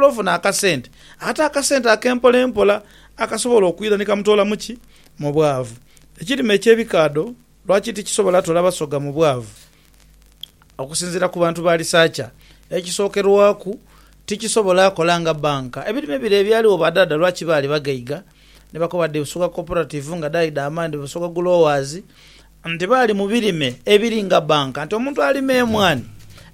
Ofuna akasente, ate akasente ak'empolempola akasobola okwira ni kamutoola mu ki? Mu bwavu. Ekirime eky'ebikaadho lwaki tikisobola toola basoga mu bwavu? Okusinziira ku bantu ba lisaacha, ekisookerwaku tikisobola kola nga bbanka. Ebirime bire ebyaligho badhaadha lwaki baali baghaiga? Ni bakoba dhi Busoga Cooperative nga dhaidha amaani Busoga Growers Nti baali mu birime ebiri nga bbanka, nti omuntu alima emwaani,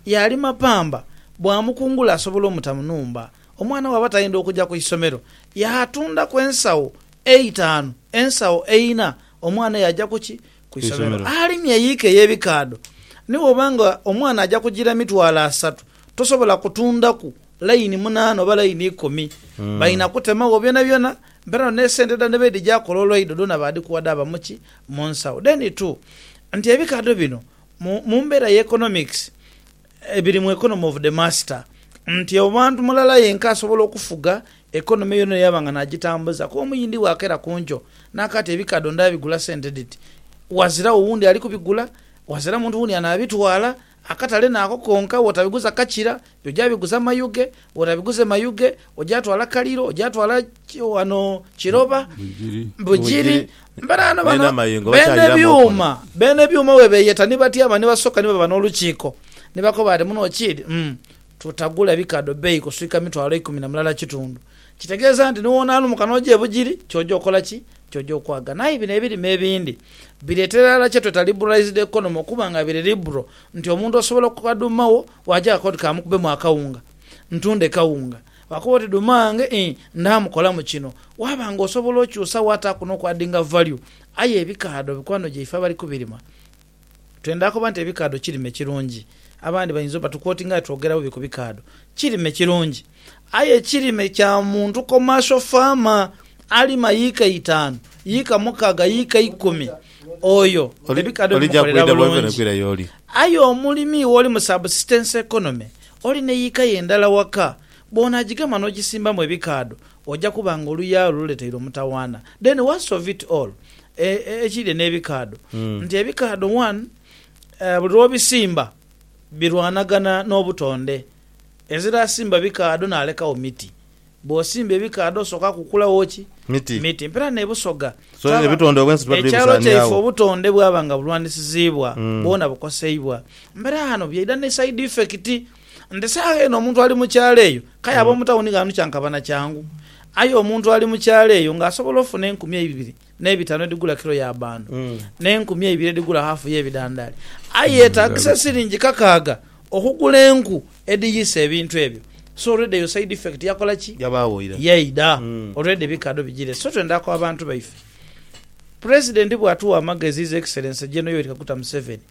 yaalima pamba, bw'amukungula asobola omuta mu nhumba. Omwana bw'aba tayendha okuja ku isomero, yaatundaku ensawo eitaanu, ensawo eina, omwana yaaja ku ki? Ku isomero. Alimye eyiika ey'ebikaadho, ni bw'oba nga omwana aja kugira mitwalo asatu, tosobola kutundaku Layini munaana oba layini ikumi balina kutemagho byonabyona mbera no nesente dhano dhebedhija akola olwaido dhona badhikuwa dhaba muki? Munsawo. Then two nti ebikadho bino mumbera ye economics biri mu economy of the master nti omuntu mulala yenka asobola okufuga economy yona eyo yaba nga najitambuza kuba omuyindi bwakera kunkyo naka ati ebikadho ndabigula sente dhiti wazira wo wundi alikubigula wazira muntu wundi anabitwala Akatale naako konka wotabiguza kakira, oja biguza Mayuge, wotabiguze Mayuge, oja twala Kaliro, oja twala wano Kiroba, Bugiri, mberaano bano beene byuuma, beene byuuma webeyeta ni batyama ni basoka ni baba n'olukiiko, ni bakoba ati muno kiri umm tutagula bikaadho beeyi kuswika mitwalo ikumi na mulala kitundu. Kitegeeza nti ni wonaalumuka n'oja e Bugiri, kyoja okola ki? Ky'oja okwagana. Aye bino ebirime ebindi bireetera irala kye tweta liberalised economy okuba nga biri liberal nti omuntu osobola okukoba dhuuma wo waagya akoba oti kamukubemu akawunga ntunde kawunga. Bwakoba oti dhuuma wange ii ndhaamu kolamu kino. Waaba nga osobola okyusa wo ataaku n'okuaddinga value. Aye ebikaadho mikwano gyaife abali ku birima Twendha koba nti ebikaadho kirime kirungi. Abandi bainza oba tukwotinga aye twogera bubi ku bikaadho. Kirime kirungi aye ekirime kya muntu commercial farmer alima yiika itaanu, yiika mukaaga, yiika ikumi oyo ebikaadho bimukolera bulungi. Aye omulimi wo oli mu subsistence economy, oli ne yiika yo endala waka bw'onaagigema n'ogisimbamu ebikaadho Oja kuba nga oluya olwo luleteire omutawaana. Then worst of it all e, e, ekiri n'ebikaadho, nti ebikaadho one, e, buli lw'obisimba birwanagana n'obutonde. Ezira asimba bikaadho n'alekagho miti. Bw'osimba ebikaadho osooka kukulawo ki? Miti. Miti. Mpera n'e Busoga So twaba, ebitonde obwensi tuba tuli ekyalo kyaife bisaaniagho. obutonde bwaba nga bulwanisiziibwa, bwona bukoseibwa. Mpera ghano byaidha ni side effect. Nti saagha eno omuntu ali mu kyalo eyo k'aye ab'omu tawuni ghano kyankaba na kyangu. Aye omuntu ali mu kyalo eyo ng'asobola ofuna enkumi eibiri n'ebitaanu edhigula kilo ya bbaando, n'enkumi eibiri edhigula haafu y'ebidandaali. Aye yeetaagisa siringi kakaaga okugula enku edhiyisa ebintu ebyo. So already eyo side effect yakola ki? Yabaagho ira. Yaidha. Already ebikaadho bijiire. So twenda ku abantu baife. President bw'atuwa amagezi His Excellency General Yoweri Kaguta Museveni,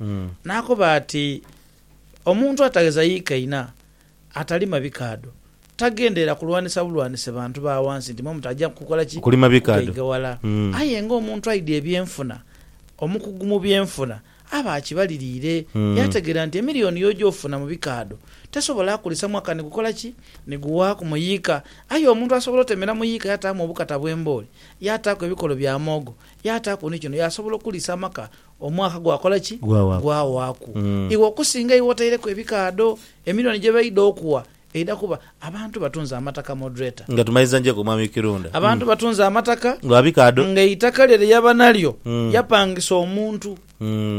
n'akoba ati. Omuntu atagheza yikaina, atalima bikaadho, tagenderera kulwanisa bulwanise bantu ba ghansi nti mwe mutaja kukola ki? Kugaiga ghala. Aye ng'omuntu aidhi ebyenfuna, omukugu mu byenfuna aba akibaliriire yaategeera nti emiliyoni y'oja ofuna mu bikaadho tesobola kulisa mwaka ni gukola ki? Ni guwaaku mu yiika. Aye omuntu asobola otemera mu yiika yaataamu obukata bw'embooli, yaataaku ebikolo bya muwogo, yaataaku ni kino, yaasobola okulisa amaka Omwaka gwakola ki? Gwawaaku. Iwe okusinga iwe otaireku ebikaadho, emilioni gye baidha okuwa eidha kuba. Abantu batunze amataka Moderator. Nga tumaliza njeku Omwami Kirunda. Abantu batunze amataka. Lwa bikaadho. Nga eitaka lye lye yaba nalyo yapangisa omuntu,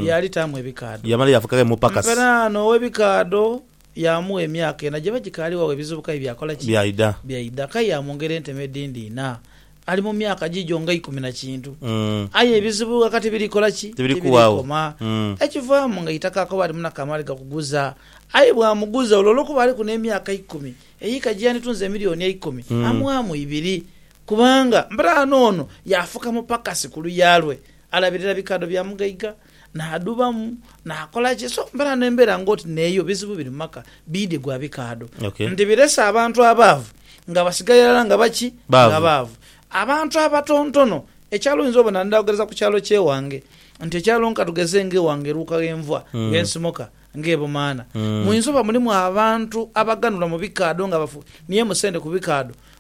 yaalitaamu ebikaadho. Yamala yafuuka ghe mupakasi. Mperaano ow'ebikaadho. Yaamugha emyaka ena gye bagikaali wagho ebizibu kaye byakola ki? Byaidha. Byaidha. Kaye yaamwongera enteme edhindi ina. Ali mu myaka giigyo nga ikumi na kintu. Aye ebizibu ghaka tibiri kola ki? Tibiri koma. Ekivaamu nga eitaka akoba alimu na kamaali gakuguza. Aye bw'amuguza olwo olw'okuba aliku n'emyaka ikumi, eyiika gye yanditunze emilioni eikumi, amughamu ibiri. Kubanga mberaano ono yaafuka mupakasi ku luya lwe, alabirira bikaadho bya mugaiga. Naadhubamu, naakola ki? So mbeera n'embeera ng'oti n'eyo, bizibu biri mu maka, biidhi gwa bikaadho. Okay. Nti birese abantu abaavu nga basigaire irala nga baki? Baavu. Nga baavu. Abantu abatontono, ekyalo oyinza obona, ndhaogereza ku kyalo ky'ewange, nti ekyalo nka tugeze ng'ewange Luuka ghenva, ghe nsimoka, ng'e Bumaana, muyinza oba mulimu abantu abaganhulwa mu bikaadho nga bafu, ni emusendhe ku bikaadho,